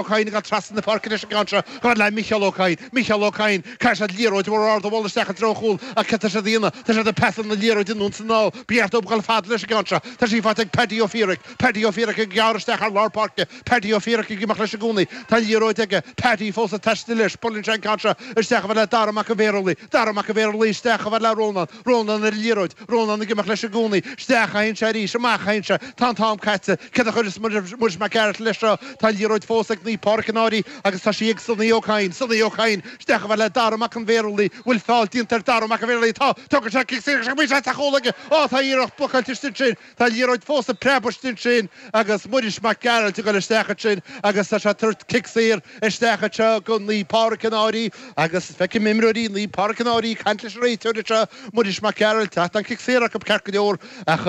Ó Cadhain ag dul trasna na páirce leis an gceann seo, gar le Micheál Ó Cadhain. Micheál Ó Cadhain. Caithfidh siad liathróid mhór ard a bhualadh isteach i dtreo an chúil ach céard tá siad a dhéanamh? Tá siad ag pasáil na liathróide anonn is anall. Ba cheart dóibh dhul fada leis an gceann seo. Tá sí faighte ag Paddy Ó Fiaraic. Paddy Ó Fiaraic ag gearradh isteach thar lár páirce. Paddy Ó Fiaraic ag imeacht leis i gcónaí. Tá an liathróid aige. Paddy fós ag taisteal leis. Buaileann sé an ceann seo isteach i bhfad le Dara Mac an Bhéarlaigh. Dara Mac an Bhéarlaigh isteach i bhfad le Rónán. Rónán ar an liathróid, Rónán ag imeacht leis i gcónaí, isteach a théann sé arís, amach a théann sé, tá an t-am caite, céard a chuirfeas Muiris Mac Gearailt leis seo, tá an liathróid fós ag Naomh Pádraic An Fhairche agus tá sí ag Sonaí Ó Cadhain, Sonaí Ó Cadhain, isteach i bhfad le Dara Mac an Bhéarlaigh, bhfuil feall déanta ar Dara Mac an Bhéarlaigh, tá, tógann sé cic saor, is iomaí seans ar chúl aige, á tá an iarracht blocáilte istigh ansin, Tá an liathróid fós ag preabadh istigh ansin agus Muiris Mac Gearailt ag dul isteach ansin agus tá sé ag tabhairt cic saor isteach anseo do Naomh Pádraig An Fhairche agus feicim imreoirí Naomh Pádraig An Fhairche ag caint leis an réiteoir anseo, Muiris Mac Gearailt, ach tá an cic saor acu ceart go leor ach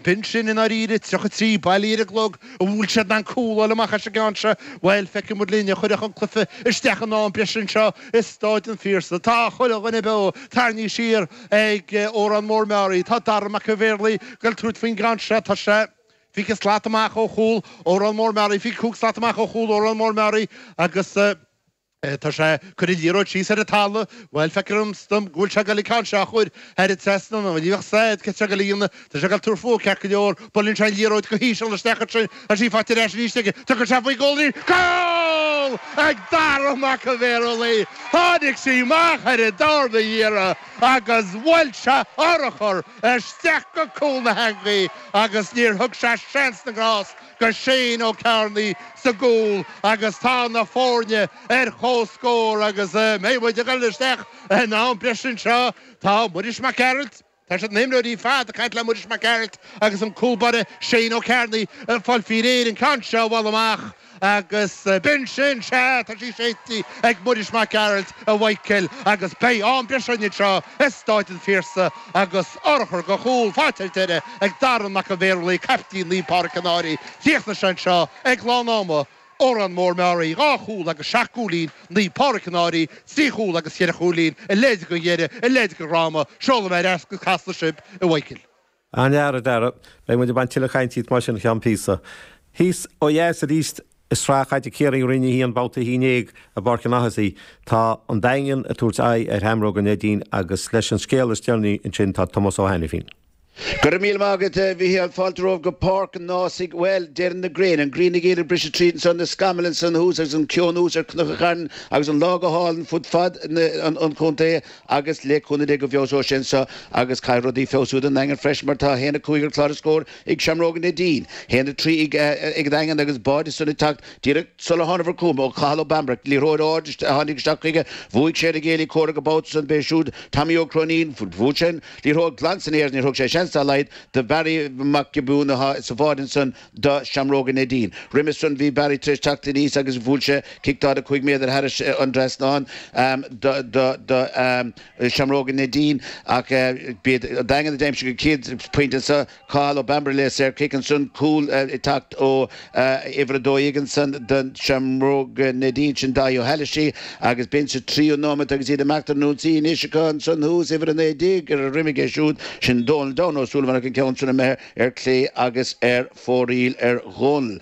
b'in sin i ndáiríre, 33 bailithe ar an gclog an bhfuil siad in ann cúl a fháil amach as an gceann seo, bhuel, feicfidh muid linn, a chuirfeadh an cluiche isteach in am breise anseo i Stáid an Phiarsaigh. Tá chuile dhuine beo, tarraingthe siar. ag Órán Mór Meáraí. Tá Dara Mac an Bhéarlaigh goil tabhairt faoin gceann seo. Tá sé fiche slat amach ó chúl Órán Mór Meáraí, fiche cúig slat amach ó chúl Órán Mór Meáraí agus tá sé ag cur an liathróid síos ar an talamh. Bhuel, feictear dom go bhfuil sé goil an ceann seo a chur thar an trasnán. Ní bheadh a fhios agat céard tá sé goil a dhéanamh. Tá sé ag goil ag tabhairt faoi ceart go leor. Buaileann sé an liathróid go híseal isteach ansin agus í faighte ar ais arís aige. Tugann sé faoi chúl arís. Cúl ag Dara Mac an Bhéarlaigh! Tháinig sí amach ar an darna hiarraidh agus bhuail sé urchar isteach go cúl na heangaí agus níor thug sé seans na ngrást go Shane Ó Cearnaigh sa gcúl agus tá na foirne ar comhscór agus beidh muid ag dul isteach in am breise anseo. Tá Muiris Mac Gearailt. Tá siad na himreoirí ar fad ag caint le Muiris Mac Gearailt agus an cúl báire Shane Ó Cearnaigh ag fáil faoi réir an ceann seo a bhualadh amach agus b'in sin. Sea, tá sí séidte ag Muiris Mac Gearailt a Mhaidhcil agus beidh am breise againn anseo i Stáid an Phiarsaigh agus urchar de chúl faighte ar deireadh ag Dara Mac an Bhéarlaigh, caiptín Naomh Pádhraic An Fhairche. Chríochnaigh sé anseo ag lán ama. Órán Mór Meáraí, dhá chúl agus seacht gcúilín, Naomh Pádraig An Fhairche, trí chúl agus cheithre chúilín, a leithéid de dheireadh, a leithéid de dhráma, seolfaidh mé ar ais go Casla sibh a Mhaidhcil. An-fhear, a Dhara, beidh muid ag baint tuilleadh cainte díot mar sin faoi cheann píosa. Thíos ó dheas arís i Sraith Chaide Chiarraí roinn a haon babhta a haon déag i bPáirc an Ághasaigh, tá an Daingean ag tabhairt aghaidh ar Sheamróga Neidín agus leis an scéal is deireanaí ansin tá Tomás Ó hAiniféin. Go raibh míle maith agat, a Mhicheal. Fáilte romhaibh go Páirc an Ághasaigh. Bhuel, deireann na gréine, an ghrian ag iarraidh briseadh tríd anseo, na scamaill ansan thuas agus an ceo anuas ar Chnoc an Chairn agus an lá go hálainn fud fad an chontae agus le cúnamh Dé go bhfeabhsóidh sé anseo agus caithfidh rudaí feabhsú ag an nDaingean freisin mar tá haon a cúig ar chlár na scór ag Seamróga Neidín, haon a trí ag an nDaingean agus báide ansan ag teacht díreach sular thángabhair chugam ó Chathal Ó Bambaire, liathróid ard a tháinig isteach chuige, bhuaigh sé ar an gcéile comhraic an babhta san, b'é siúd Tommy Ó Cróinín, bhuail sé an. liathróid glan san aer, níor thug sé seans dá laghad do Bharry Mac Giobúin atá sa bháide ansan do Sheamróga Neidín. Roimis san bhí Barry tar éis teacht aníos agus bhuail sé cic 45 méadar thairis an dtrasnán do Sheamróga Neidín ach b'iad an Daingean a d'aimsigh an chéad phointe sa Cathal Ó Bambaire le saorchic ansan, cúl ag teacht ó uimhir a dó dhéag ansan do Seamróga Neidín, sin Dáithí Ó hÁilgheasa agus b'in sa tríú nóimeat agus iad ag imeacht ar an ionsaí. Anois acu ansan thuas, uimhir a naoi déag ar a dhroim aige siúd, sin Dónal Down Ó Súilleabháin ach an ceann sin imithe ar clé agus ar fóraoil ar Dhónal.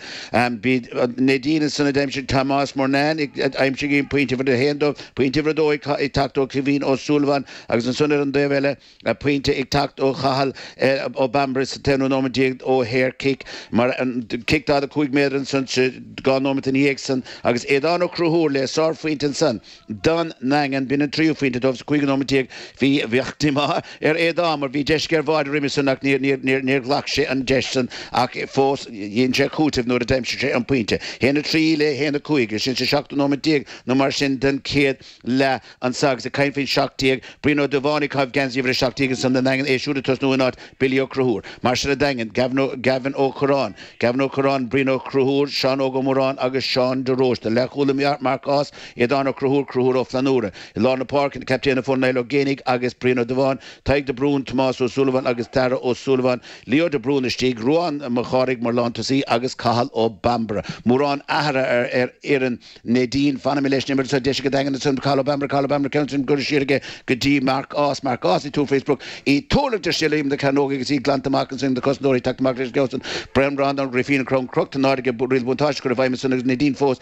B'í Neidín ansan a d'aimsigh Tomás Murnane ag aimsiú pointe uimhir a haon dóibh, pointe uimhir a dó ag teacht ó Caoimhín Ó Súilleabháin agus ansan ar an dtaobh eile, Tá pointe ag teacht ó Chathal Ó Bambaire sa t-aonú nóiméad déag ó shaorchic, mar an cic 45 méadar ansan dhá nóiméad ina dhiaidh san, agus Aodhán Ó Cruthúir le sár phointe ansan don nDaingean. B'in an tríú phointe dóibh sa cúigiú nóiméad déag. Bhí díomá ar Aodhán mar bhí deis ar bháide roimhe san ach níor ghlac sé an deis san ach fós dhein sé cúiteamh nuair a d'aimsigh sé an pointe. 1-3 le 1-5. Sin sa seachtú nóiméad déag nó mar sin den chéad leath. Anseo agus ag caint faoin seacht déag, Brian Ó Dubháin ag caitheamh geansaí uimhir a seacht déag ar son na nDaingean, é siúd ag tosnú in áit Billy Ó Cruthúr. Mar sin an Daingean, Gavin Ó Curráin, Gavin Ó Curráin, Brian Ó Cruthúr, Seán Óg Ó Móráin agus Seán de Róiste. Leathchúlaí Marc Ághas, Aodán Ó Cruthúr, Cruthúr Ó Flannúra. I lár na páirce, captaen na foirne, Niall Ó Géibheannaigh agus Brian Ó Dubháin, Tadhg de Brún, Tomás Ó Súilleabháin agus Darragh Ó Súilleabháin, Leo de Brún istigh, Ruadhán Mac Chárthaigh mar lántosaí agus Cathal Ó Bambaire, mórán athruithe ar fhoireann Neidín, Fanaimis leis an imirt seo deis ag an nDaingean ansin Cathal Bambaire, Cathal Bambaire ceann ansin curtha siar aige go dtí Mark Ághas, Mark Ághas ag tabhairt fé sprioc, í ag tuirlingt istigh ar imeall na cearnóige agus í glanta amach ansin ag na cosantóirí ag teacht amach leis an gceann san Breandán Ó Grífín an crann crochta in airde riail buntáiste á chur i bhfeidhm ansin agus Neidín fós